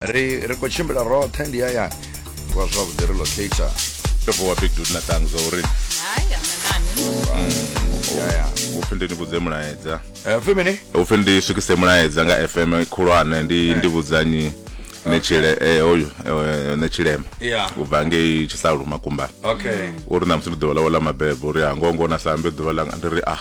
ri ri khou tshimbila roṱhe ndi hayani wa zwavhuḓi ri locator ndo vuwa big dude na tangs zwa uri upfi ndi ni vhudze mulaedza Eh, pfi mini upfi ndi swikise mulaedza nga fm khulwane ndi ndi vhudzanyi netshile eh, hoyu eh, netshilema Yeah. u bva ngei tshisalu makumbani okay uri na musi ndi ḓuvha ḽawe ḽa mabebo uri ha ngongo na sambe ḓuvha ḽanga ndi ri ah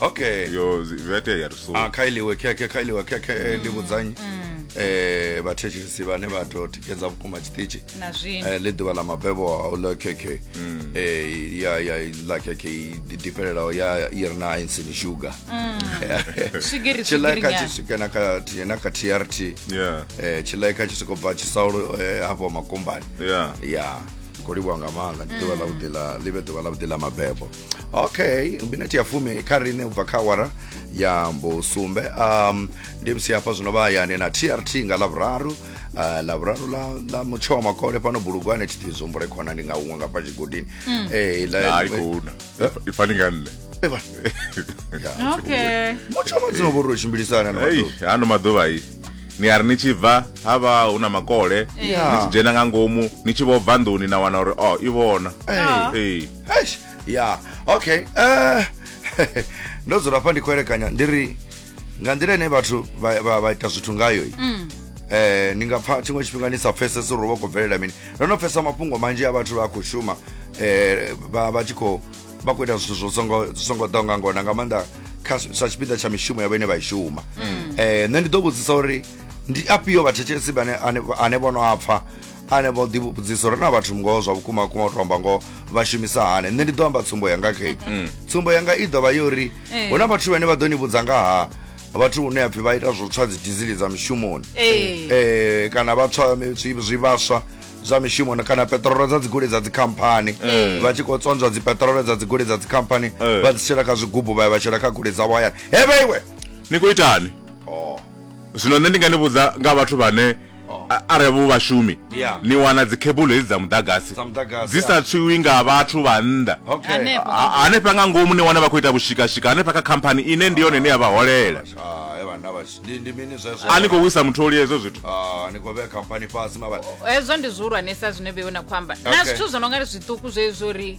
okay yo zi- zwi a itea ri so Ah, kha iliwe khekhe kha iliwe khekhe eh, ndi vhudzanyi eh vhathetshelesi vhane vha to tikedza vhukuma tshiṱitshi na zwino eh, ḽi ḓuvha ḽa mabebo a u ḽa khekhe eh, ya ya ḽa khekhe i diferelaho ya i re na insini sugar swigiri tshiḽa swigiri kha nyana tshi swike na kha T- na kha trt yeah eh, tshiḽa kha tshi soko bva tshisaulo eh, hafho makombani yeah ya khou livhuwa nga maanḓa ndi ḓuvha ḽavhuḓi ḽa ḽi vhe ḓuvha ḽavhuḓi ḽa mabebo okay minete ya fumi kha rine ubva kha awara ya mbusumbe um, ndi msi hafha zwino vha hayani na trt nga lavhuraru uh, lavhuraru la, la mutsho wa makole pano bulugwane thi tizumbule khona ndi nga huṅwe nga pa tshigodini mm. eh, la, hai khou na i fani nga nne Eva. Ya, okay mutsho wa madzino vhori u tshimbilisana na ei maḓuvha. ano maḓuvha i ni a ri ni tshi bva ha vha hu na makole Yeah. ni tshi dzhena nga ngomu ni tshi vho bva nḓuni na wana uri o i vhona Ah. ei eish ya okay eh ndo dzula hafha ndi khou elekanya ndi ri nga nḓila ine vhathu vha- vha vha ita zwithu ngayo i eh ni nga pfa tshiṅwe tshifhinga ni sa pfesesi uri vha khou bvelela mini ndo no pfesa mafhungo manzhi a vhathu vha khou shuma eh vha vha tshi khou vha khou ita zwithu zwo songo zwo songo ḓaho nga ngona nga maanḓa kha sa tshipiḓa tsha mishumo ya vhene vha i shuma eh nṋe ndi ḓo vhudzisa uri ndi afhio vhathetshelesi vhane ane- ane vho no a pfa anevho ḓi vhudzisa uri na vhathu ngoho zwa vhukuma kuma u tomba ngoho vha shumisa hani nṋe ndi ḓo amba tsumbo yanga khe mm. tsumbo yanga i ḓovha yo uri eh. hu na vhathu vhane vha ḓo ni vhudza nga ha vhathu hune apfhi vha ita zwo tswa dzi dizili dza mishumoni eh. Eh, kana vha tswa zwivhaswa zwa mishumo kana petrolo dza dzigoloi dza dzikhamphani mm. vha tshi khou tsonzwa dzipetrolo dza dzigoloi dza dzikhamphani mm. vha dzi shela kha zwigubu vha ya vha shela kha goloi dzavho hayani hevhe iwe ni khou itani oh. zwino nṋe ndi nga ni vhudza nga vhathu vhane Oh. arali vhu vhashumi ni wana dzikhebulo hedzi dza muḓagasi dzi sa tswiwi nga vhathu vha nnḓa hanefha nga ngomu ni wana vha khou ita vhushikashika hanefha kha khamphani ine ndi yone ine ya vha holela a ni khou wisa mutholi hezwo zwithu hezwo ndi zwihulwanesa zwine vheiwe na khou amba na zwithu zwo no nga zwiṱuku zwezwo ri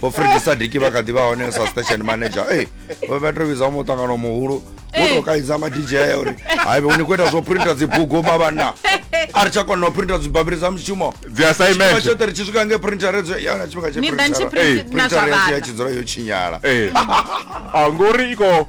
vho fredi sadiki vha kha ḓi vha hone sa station manager e vho vha to vhidza muṱangano muhulu wo to kaidza ma dj a uri haive u ni khou ita zwo printa dzibugu mavhanna a ri tsha kona u printa dzibabiri dza mushumo dzi assignment tshoṱhe ri tshi swika nge printer redzo yana tshifhinga tshe printer ya tshi dzula yo tshinyala a ngori iko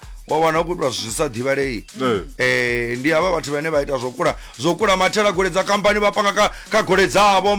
wa wana u khou itwa zwi sa ḓivhalei um ndi havha vhathu vhane vha ita zwo kula zwo kula mathela golei dza khamphani vha panga kha golei dzavho